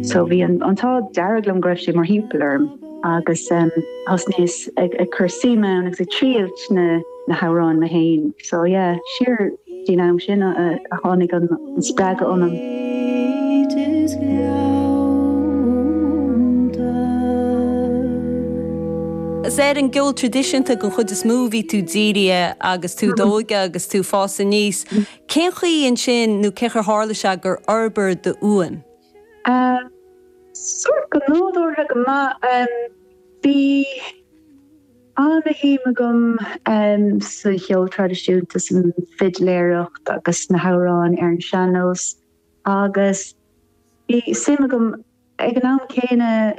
So bhí an t-ádh dearg liom go raibh sé mar thimpeall orm agus thosnaíos ag cur suim ann agus ag triailt na hamhráin mé féin. So yeah, siar faoin am sin a tháinig an spreagadh ionam. Is ar an gceol traidisiúnta den chuid is mó a bhí tú dírithe agus tú i d'óige agus tú ag fás aníos. Cén chaoi ansin, nó cén chaoi ar tharla sé, gur fhorbair d'fhuaim? Sórt go nádúrtha go maith. Bhí ana-shuim agam sa cheol traidisiúnta, san fidléireacht agus sna hamhráin ar an sean-nós agus bhí suim agam, Ag an am céanna,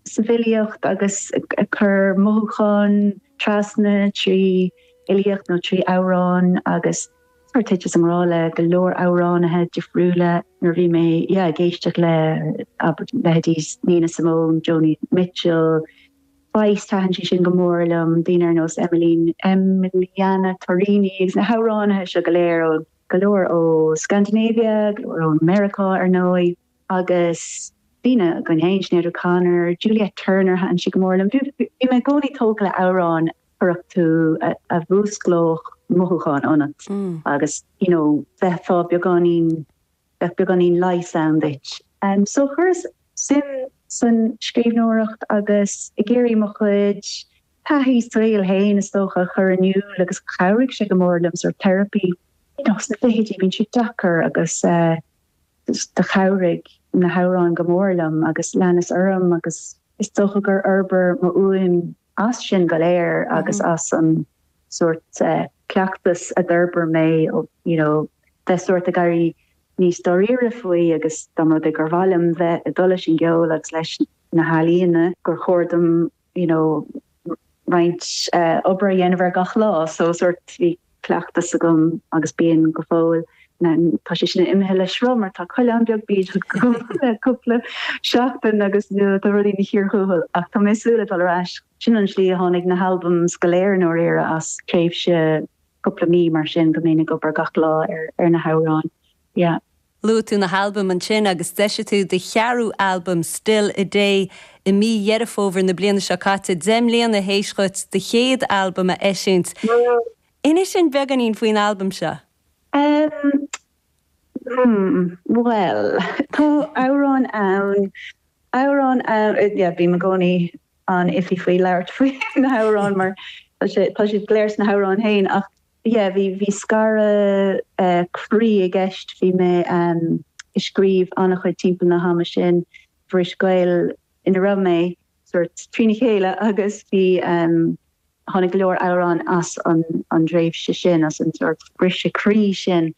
sa bhfilíocht, agus ag cur mothúchán trasna trí fhilíocht nó trí amhráin, agus thiteas i ngrá le go leor amhránaithe difriúla nuair a bhí mé, yeah, ag éisteacht le, abair, leithéidí Nina Simone, Joni Mitchell, Feist, thaitin sí sin go mór liom, daoine ar nós Emmeline, Emiliana Torrini, agus na hamhránaithe seo go léir ó, go leor ó Scandinavia, go leor ó Meiriceá, ar ndóigh. Agus daoine againn féin, Sinéad O'Connor, Juliette Turner, thaitin sí go mór liom. Bhí mé i gcónaí tógtha le amhráin a chuirfeadh tú, a mhúsclódh mothúcháin ionat agus you know bheifeá beagáinín, bheadh beagáinín leighis ann duit. So chuireas suim san scríbhneoireacht agus ag iarraidh mo chuid taithí saoil féin is dócha a chur in iúl agus chabhraigh sé go mór liom, sort of therapy. You know sna fichidí bíonn sé deacair agus eh, Do chabhraigh na hamhráin go mór liom agus leanas orm agus is dócha gur fhorbair mo fhuaim as sin go léir agus as an sórt cleachtas a d'fhorbair mé ó, you know, bheith sórt ag éirí níos dáiríre faoi agus dá mba rud é gur mhaith liom bheith ag dul leis an gceol agus leis na healaíona gur chóir dom you know, roinnt obair a dhéanamh ar gach lá, so sort bhí cleachtas agam agus bíonn go fóill, tá sé sin imithe le sruth mar tá coileán beag bídeach agam le cúpla seachtain agus you know tá rudaí ina chíor thuathail ach tá mé ag súil le dul ar ais. Sin an slí a tháinig na halbums go léir i ndáiríre as tréimhse cúpla mí mar sin go mbeinn ag obair gach lá ar na hamhráin yeah. Luaigh tú na halbaim ansin agus d'eisigh tú do cheathrú albam, Still A Day, i mí Dheireadh Fómhair na bliana seo caite, deich mbliana théis dhuit do chéad albam a eisiúint. Inis dhúinn beagáinín faoin albam seo. Ehm. hmm. bhuel. tá amhráin ann, amhráin ann, yeah, bím i gcónaí an-iffy faoi labhairt faoi na hamhráin mar tá siad go léir sna hamhráin féin ach yeah bhí bhí scaradh croí i gceist bhí mé ehm ag scríobh an-chuid timpeall na hama sin bhris gaol ina raibh mé sórt trína chéile agus bhí ehm tháinig go leor amhráin as an an dtréimhse sin as an sórt briseadh croí sin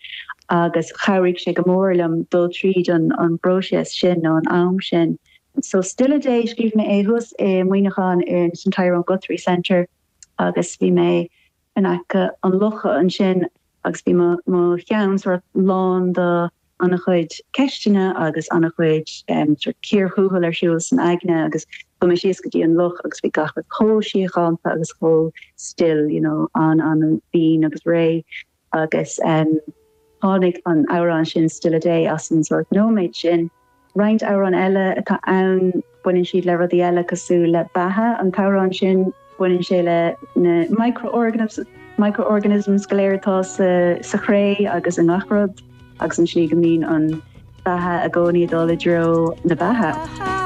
agus chabhraigh sé go mór liom dul tríd an an bpróiseas sin nó an am sin so Still a Day scríobh mé é thuas i Muineachán in san Tyrone Guthrie Centre agus bhí mé in aice an locha ansin agus bhí mo cheann sort of lán do an-chuid ceisteanna agus an-chuid sort of cíorthuathail ar siúl san aigne agus chuaigh mé síos go dtí an loch agus bhí gach rud chomh síochánta agus chomh still you know an-an-chiúin agus réidh agus tháinig an amhrán sin Still a Day as an sort of nóiméad sin. Roinnt amhrán eile atá ann, baineann siad le rudaí eile cosúil le beatha. An t-amhrán sin, baineann sé le na micro-organisms go léir atá sa chré agus i ngach rud, agus an tslí go mbíonn an beatha i gcónaí ag dul i dtreo na beatha.